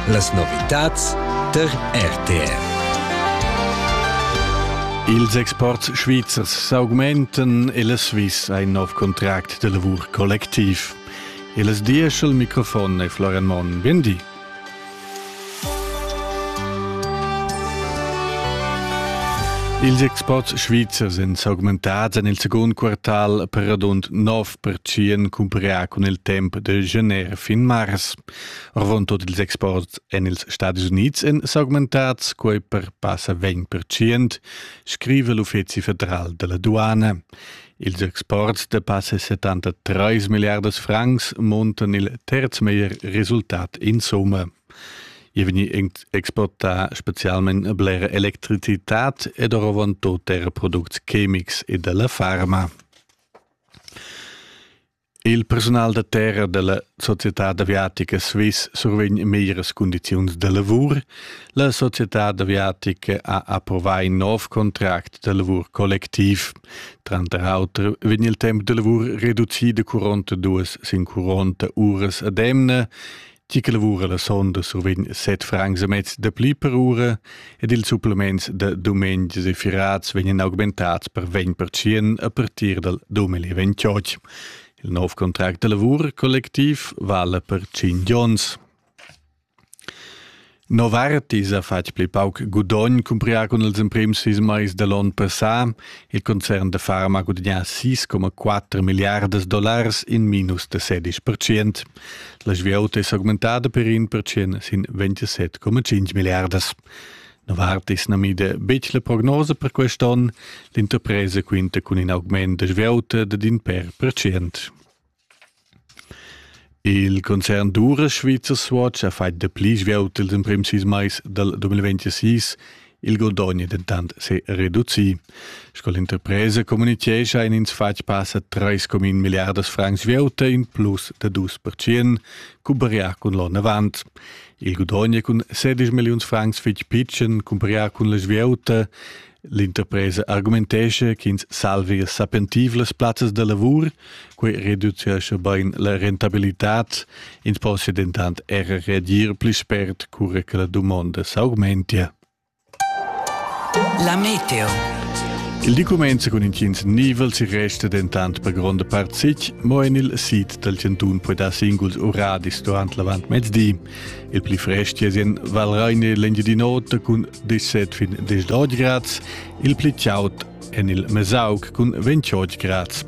Las novitads tar RTR. Ils exports svizzers s'augmentan e la Swiss ha in nov contract de lavur collectiv. E las diesch al microfon è Florian Monn. Bien di. Ils exports svizzers èn s'augmentads en il secund quartal per radund 9 pertschien cumparià cun il temp de gener fin mars. Orvon tot ils exports en ils Stadis Unids en s'augmentats, quei per passa 20%, scrive l'Uffizi federal della Duana. Ils exports de passa 73 milliardas francs montan il terz meglier resultat in somma. Je veni exporta specialment blera electricitat ed orovon toter products chemics e della farma. Il persunal da terra dalla societad aviatica Swiss survegn meglieras cundiziuns da lavur. La societad aviatica ha approvà in nov contract da lavur collectiv. Tranter auter vegn il temp da lavur reducì da 42 sin 40 uras ad emna Ti che lavura la sonda survegn set francs e mez da pli per ura ed ils supplements da dumengs e firats vegnan augmentads per 20% a partir dal 2028. Il nov contract da lavur collectiv vala per 5 onns. Novartis ha fatg pli pauc gudogn cumprià cun ils emprims sis mais da l'onn passà. Il concern da farma ha gudagnà 6,4 milliardas dollars in minus da 16%. La svieuta è s'augmentada per in percent sin 27,5 milliardas. Novartis na mida betg la prognosa per quest'onn. L'interpresa quinta cun in augment da svieuta dad in per percent. Il concern d'uras svizzer Swatch ha fatg dapli svelt ils emprims sis mais dal 2026, il guadogn è dentant se reducì. Sco l'interpresa communitgescha han ins fatg passa 3,1 milliardas francs svelt in plus da 2%, cumparià cun l'onn avant. Il guadogn è cun 16 milliuns francs fitg pitschen cumparià cun la svieuta L'interpresa argumentescha ch'ins salvia sapentivlas plazzas da lavur, quei reducescha bein la rentabilitad, ins possia dentant era reagir pli spert cura che la dumonda s'augmentia. La meteo. Il document cun intgins nivel si resta dentant per gronda part sic, mo en il sit dal chantun poi dar singuls uradis durant l'avant mezdi. Il pli frest jesen val reine l'Engiadin'Ota cun 17 fin 10 grads, il pli chaud en il Mesaug cun 28 grads.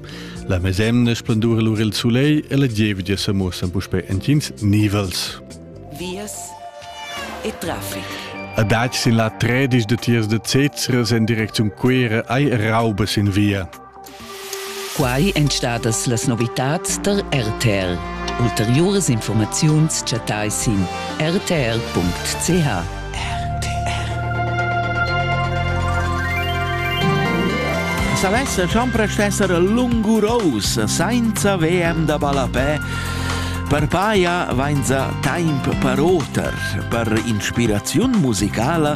La mesemna splendura lur il soleil e la gievgia se muossen puspe entgins nivels. Vias e traffic. A Dach sin la 13 de tiers de Cezra sen direction Quera ai raubes in via. Quai èn stadas las novitads tar RTR. Ulteriuras informaziuns chattai sin rtr.ch. Savess champres esser lungurous sainza VM da ballapè Per paia vainza taimp per oter, per inspiraziun musicala